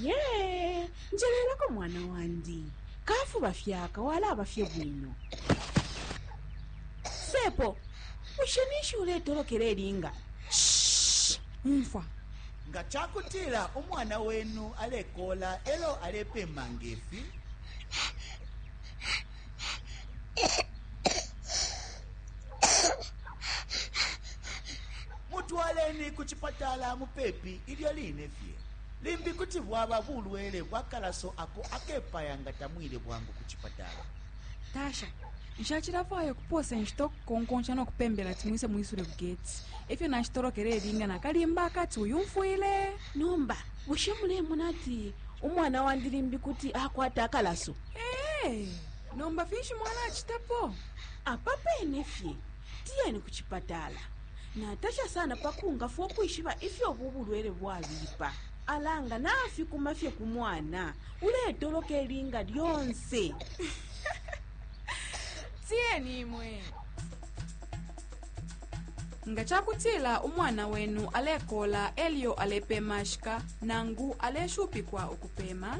ye njelelako mwana wandi kafuba fyaka walaba fye bwino sepo bushe ninshi uletolokela elinga umfwa nga ca kutila umwana wenu alekola elo alepema ngefi mutwaleni ku cipatala mupepi ilyo line fye limbi kuti bwaba bulwele bwa kalaso ako akepaya nga tamwile bwangu ku cipatala tasha nshacilafwaya ukupoosa inshita ukukonkonsha no kupembela ti mwise mwisule bugeti efyo nashitolokele elinga nakalimba akati uyumfwile nomba bushe mulemona ati umwana wandi limbi kuti akwata akalaso Hey, nomba finshi mwalacitapo apa pene fye tiyeni ku cipatala natasha sana pa kungafwa ukwishiba ifyo ubu bulwele bwabipa alanga nafikuma fye ku mwana uletoloka ilinga lyonse tiyeni imwe nga ca kutila umwana wenu alekola elyo alepemashika nangu aleshupikwa ukupema